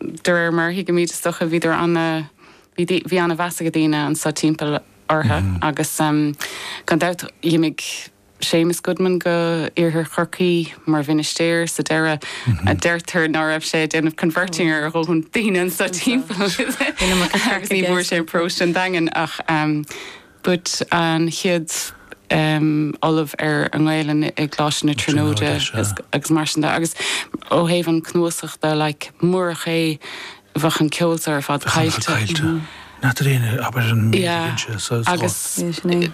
de réir mar a thuigimid is dócha, bhíodar ana, bhí dí, bhí ana mheas age daoine anso timpeall ortha agus gan dabht d'imigh Séamus Goodman go iarthar Chorcaí mar mhinistéir sa deireadh. Deirtear ná raibh sé ag déanamh converting ar a dhóthain daoine anso timpeall agus ní bhfuair sé an paróiste an Daingean ach But an chéad ollamh ar an nGaelainn i gColáiste na Tríonóide agus mar sin de agus ó thaobh an cnuasach de like murach é bheadh an ceol seo ar fad caillte. N'fheadar aon obair an mbíonn sé agus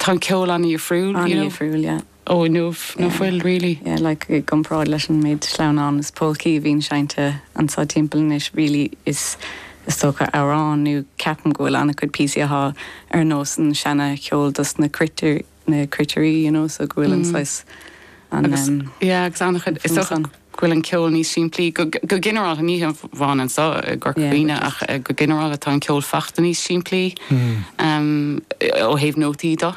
tá an ceol an-dhifriúil, an-dhifriúil yeah. Ó inniu ná fuil, really. Yeah, like, i gcomparáid leis an méid sleamhnán is polcaí a bhíonn seinnte anso timpeall anois, really, is is dócha amhráin nó ceapaim go bhfuil an-chuid píosaí athá ar nós an seana cheol dos na cruitire, na cruitirí, you know, so go bhfuil an saghas, an Agus, em, yeah, agus an-chuid, is dócha go bhfuil an ceol níos simplí, go go ginearálta, ní hamháin anso i gCorca Dhuibhne ach just go ginearálta tá an ceol fachta níos simplí, em, ó thaobh nótaí do.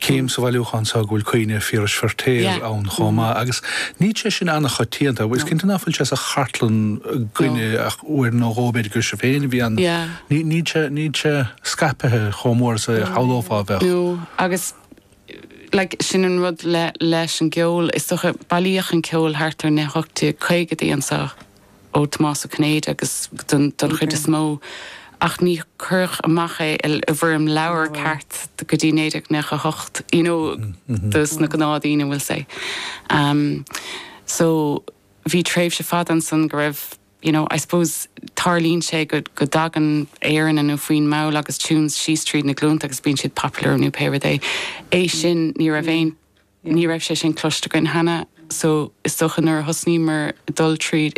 cím sa bhailiúchán so go bhfuil Caoineadh Phiarais Feiritéar ann chomh maith agus níl sé sin an-choitianta. Is cinnte nach bhfuil sé sa chartlann againne ach uair nó dhó b'fhéidir gur sibh féin a bhí ann. Níl sé, níl sé scaipthe chomh mór is a shamhlófá a bheadh. No, agus like sin an rud le, leis an gceol, is dócha, bailíodh an ceol thart ar na hocht déag caogaidí anso. ó Thomás Ó Cinnéide agus don chuid is mó ach ní cuireadh amach é i bhfoirm leabhair ceart go dtí 1998 you know dos na gnáthdhaoine we'll say ehm so bhí tréimhse fada ansan go raibh you know I suppose tarlaíonn sé go go dtagann aeranna nó foinn mall agus tunes síos tríd na glúnta agus bíonn siad popular nó pé rud é é sin ní raibh aon ní raibh sé sin cloiste againn cheana so is dócha nuair a thosnaíomar dul tríd